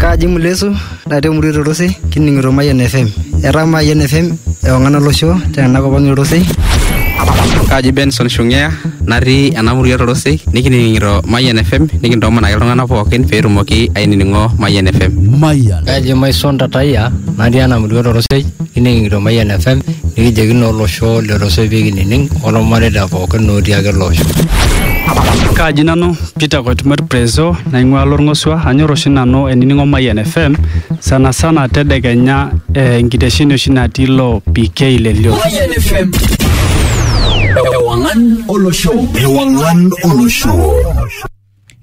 Kaji Mulesu natii emurua Torosei kining'ito Mayian FM. Etaa Mayian FM ewang'an olosho tena kop ang' Torosei. Kaji Benson Shungea natii ena murua Torosei nikining'ito Mayian FM nikintoomonaki iltung'anak pookin pee etumoki ainining'o Mayian FM. Mayian. Kaji Maison Tatayia natii ena murua Torosei kining'ito Mayian FM nikijoki naa olosho le Torosei pee kinining' olmareita pookin otii ake ele osho. Kaji nanu Peter Koitumert Prezo naing'ua Lorng'osua. Anyor oshi nanu ainining'o Mayian FM sana sana tedekenya eh, enkitesheni oshi natii lo PK le Lio. Mayian FM. Ewangan olosho. Ewangan olosho.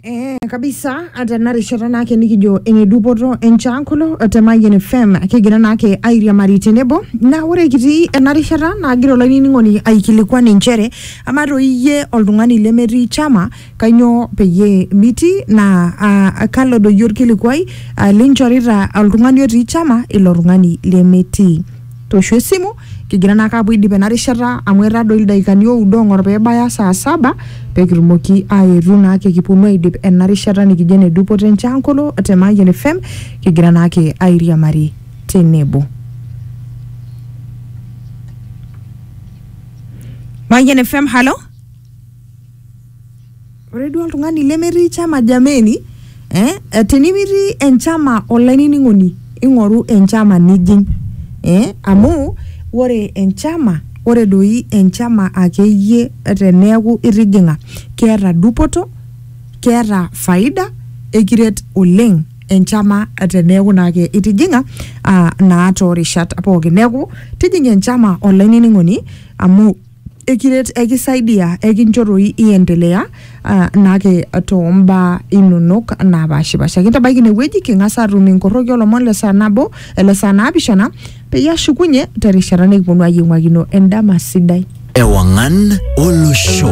Eh, kabisa hata narishata naake nikijo ene dupoto enchaankulo te Mayian FM kigira naake airiamari tenebo naa ore kitii ena rishata naagira olainining'oni aikilikuan inchere Amaa toi iyie oltung'ani lemetii chama kainyoo peyie mitii naa aa kalo doi olkilikuai aa linchorita oltung'ani otii chama ilo tung'ani lemetii. Tooshu esimu kigira naake aapuo aidip ena rishata amu etaa doi ildaikani oudo ong'or peebaya saa saba pekitumoki aetu naake kiponu aidip ena rishata nikijo ene dupoto e Nchankolo te Mayian FM kigira naake airiamari tenebo. Mayian FM, halo. Ore duo oltung'ani lemetii chama jameni, eh, eh, tenimitii enchama olainining'oni ing'oru enchama nijing. Eh, amu ore enchama, ore doi enchama akeyie teneeku itijing'a, keeta dupoto, keeta faida, ekiret oleng. enchama teneeku naake itijing'a ah, naa toorishat pookin neeku tijing'a enchama olainining'oni amu ekiret ekisaidia ekincho toi iendelea ah, naake tombaa inonok naapashipasha kintabaiki inewueji king'as atum inkorroki olomon le saa nabo ele saa naapishana peyie ashukunye terishata nikiponu ayieng'uakino endama sidai Ewangan Olosho.